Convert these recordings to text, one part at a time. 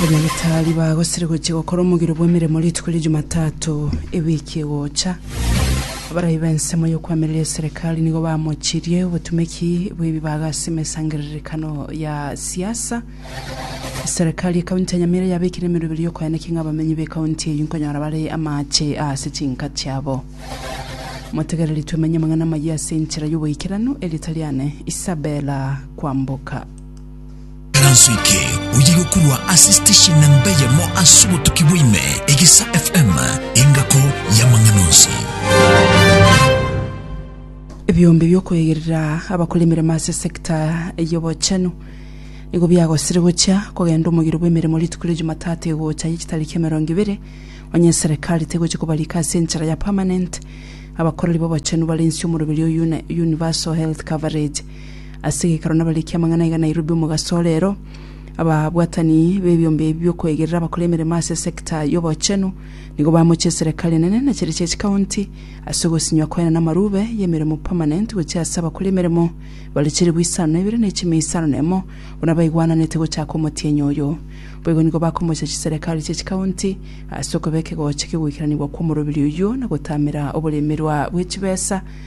Banyamitari bagosire gochia gokora omogiro bw'emeremo rituko ria Jumatatu ewiki egocha. Abarai b'ensemo y'okwamereria eserekari nigo bamochirie obotumeki bw'ebibaga ase emesangererekano ya siasa. Eserekari y'ekaunti ya Nyamira yabekire emeroberi y'okoeneki ng'a abamenyi b'ekaunti eyio nkonyora bare amache ase chinka chiabo. Motegereri twemenye amang'ana amayia ase enchera y'oboikeranu, Eritariane Isabella kwamboka. Eranso eke oye gokorwa ase station namba eyemo ase obotuki bwaime, Egesa FM, engako y'amang'ana onsi. Ebiombe biokoegerera abakora emeremo ase sector y'obochenu nigo biagosire gochia kogenda omogiro bw'emeremo rituko ria Jumatatu egocha ye chitariki emerongo ibere onye serekari tegochia kobarika ase enchera ya permanent abakoreri b'obochenu bare inse omoroberi o Uni- Universal Health Coverage Ase egeikaro nabarekia amang'ana aiga Nairobi omogaso ore ero, ababwatani b'ebiombe ebi bi'okoegerera abakore emeremo ase sector y'obochenu nigo bamochie eserekari enene na chiria chia chikaunti ase ogosinywa kwaye na amarube y'emeremo permanent gochia ase abakore emeremo bare chilifu isano na ibere na echimi isano na emo buna baigwananete gochaka omotienyi oyo. Boigo nigo bakomochia chiserekari chia chikaunti ase okobeka egocha kegoikeranigwa kw'omorobiri oyio na gotamera oboremerwa bwe chibesa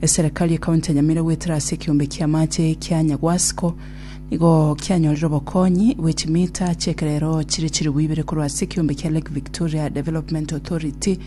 Eserekari ekaunti ya Nyamira goetera ase ekeombe ki'amache kia Nyagwasiko nigo kianyorire obokonyi bwe chimita chi'ekerero chire chilifu ibere korwa ase ekeombe kia Lake Victoria Development Authority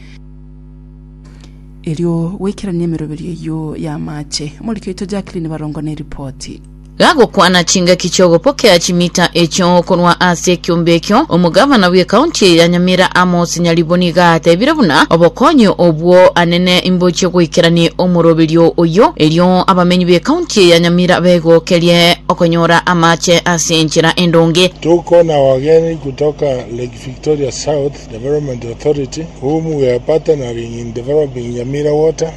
erio goikerania emeroberio eyio y'amache. Omoriki oito Jacqueline Barongo neripoti. Gagokwana chingaki chi'ogopokea chimita echio korwa ase ekiombe ekio, omogavana bw'ekaunti eye ya Nyamira Amos Nyariboni gatebire buna obokonyi obwo anene imbochie goikeranie omoroberio oyio, erio abamenyi b'ekaunti eye ya Nyamira begokerie okonyora amache ase enchera endonge. Tuko na wageni kutoka Lake Victoria South Development Authority whom we are partnering in developing Nyamira Water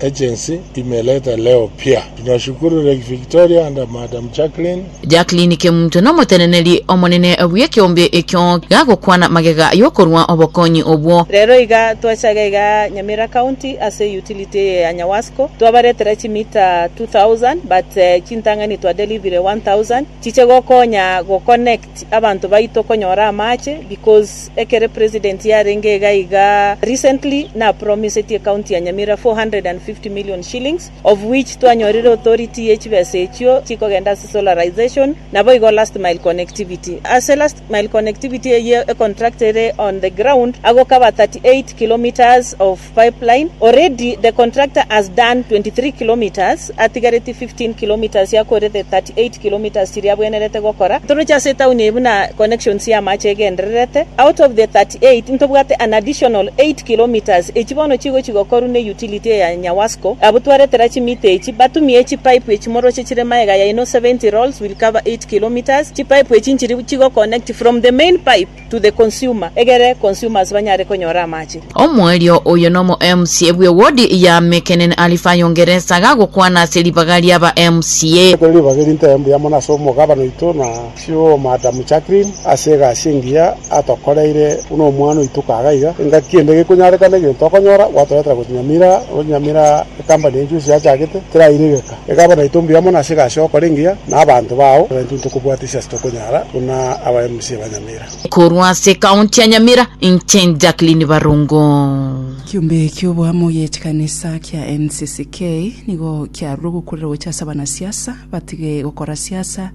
Agency imeleta leo pia. Tunashukuru Lake Victoria and Madam Jacqueline. Jacqueline Kemunto nomoteneneri omonene bw'ekeombe ekio gagokwana magega y'okorua obokonyi obwo. Rero iga twachaga iga Nyamira County ase utility eye ya Nyawasco twabaretera chi meter 2000 but chintang'ani twa delivire 1000 chiche gokonya go connect. Abanto baito konyora amache because ekere president yarenge iga iga recently napromisetie county ya Nyamira 450 million shillings of which twanyorire authority ye chibesa echio chikogenda ase solarisation naboigo last mile connectivity ase last mile connectivity eyio econtract ere on the ground agocover 38 kilometres of Pipeline, already the contractor has done 23 kilometres, atigaretie 15 kilometres ya kore the 38 kilometres chiria abwenerete gokora, toroche ase etown eye buna connections y'amache egendererete, out of the 38 ntobwate an additional 8 kilometres echi bono chigochi gokorwa ne utility eye ya Nyawasco, abwo twaretera chimita echi batumie chi pipe echi moroche chire maega yaino 70 rolls will cover 8 kilometres, chi pipe echi nchiri chigoconnect from the main pipe. to the consumer, egere consumers banyare konyora amache. Omoerio oyo nomo MCA bwe wodi ya Mekenen Alifayo Ngeresa gagokwana ase ribaga riaba MCA. Ekero ribaga eri ntebe mbuya mono ase omogabana oito na COO Madam Jacqueline ase egasi engiya atokoreire buna omwana oito kaga iga, engaki ende gekonyarekana egento okonyora gwatoretera gochi Nyamira, onye Nyamira ecompany enchusi yachagete teraire geka. Iga abana aito mbuya mono ase egasi y'ogokora engiya, na abanto bao baito ntokobwata ase ase tokonyara, buna aba MCA ba Nyamira. Korwa ase County ya Nyamira, inche Jacqueline Barongo. Ekiombe ki'oboamo gi'echikanisa kia NCCK nigo kiarure ogokurera gocha ase abanasiasa batige gokora siasa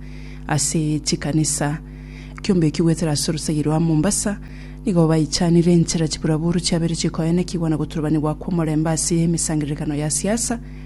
ase chikanisa. Ekiombe ekio goetera ase orosegi rwa Mombasa nigo baichanire enchera chiburaburu chiabeire chikoenekigwa na gotorobanigwa kw'omorembe ase emesangererekano ya siasa,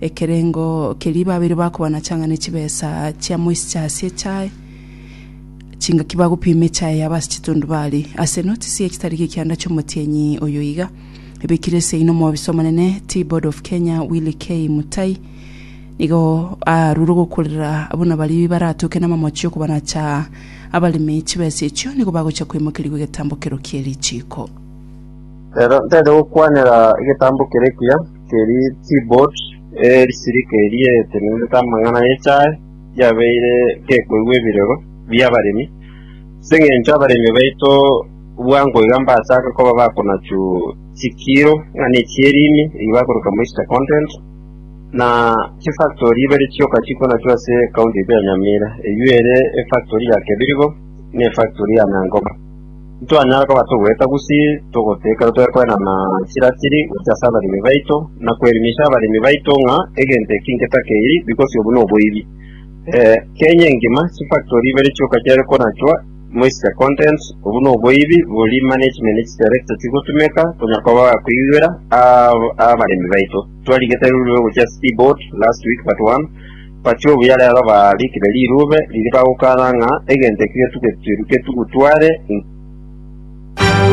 Ekerengo keria babeire bakoba na chang'ani chibesa chia moisi chiasie echae, chingaki bagopima echae yabo ase chitundu baari, ase enotisi y'echitari g'ekianda chi'omotienyi oyo iga, ebekire eseino omobisa omonene Tea Board of Kenya Willy K. Mutai nigo aarure gokurera buna baria baratoke namamochi y'okobanacha abaremi chibesa echio nigo bagochia koimokerigwa egetambo kerokia erichiiko. Rero ntarigokwanera egetambo kere ekiya. Teri Tibot, erisirika eria etenenete amang'ana y'echae, riabeire gekoigwa ebirego bi'abaremi, ase engencho abaremi baito bwango iga mbachaake koba bakonachu chikiiro ng'ana echi erimi eyio bakoroka moisture content, na chifactori ibere chioka chikonachwa ase ekaunti yaito ya Nyamira, eyio ere efactori ya Kebirigo na efactori ya Nyangoma. Ntitwanyara koba togoeta gusii togotee ekero tore koenana chirachiri gochia ase abaremi baito, na koerimisha abaremi baito ng'a egento eki nketakeiri because obo noboibi. Eh, Kenya engima chifactory ibere chioka chiare konachwa, moischer content, obo noboibi boria management ne chidirector chigotumeka konya koba bakoigwera aa abaremi baito. Twarigete rurue gochia ase T-Board last week but one, Baria obuya rero baarikire rirube riria bagokana ng'a egento eki getugetwe getugu tware inse.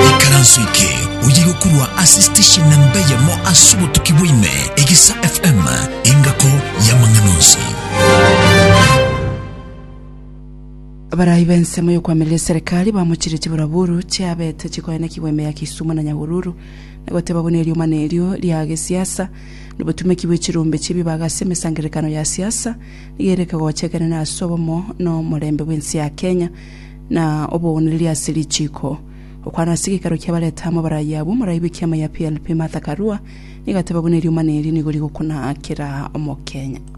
Ikaranso eke oyo igokorwa ase station namba eyemo ase obotuki bwa ime, Egisa FM, engako y'amang'ana onsi. Abarai b'ensemo y'okwamiria eserekari bamochire chiburaburu chiabete chikoenekigwa ime ya Kisumu na Nyahururu na goteba buna eriomana erio ria gesiasa Nobotumeki bwe chirombe chi'ebibaga ase emesangererekano ya siasa nigo ere ekegocha ekenene ase obomo na omorembe bw'ense ya Kenya na obogwenireria ase richiiko. Okwana ase egeikaro kia bareta amo barayi abwo, morayi bw'ekiama ya PLP Martha Karua nigo ateba buna eriomana eri nigo rigokuna kera Omokenya.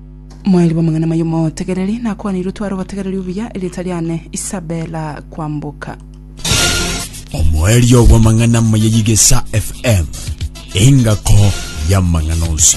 Mwaeli bw'amang'ana amaya omotegereri, nakwanirwe tware obotegereri obuya, erieta riane Isabela Kwamboka. Omoerio bw'amang'ana amaya y'Igesa FM, engako y'amang'ana onsi.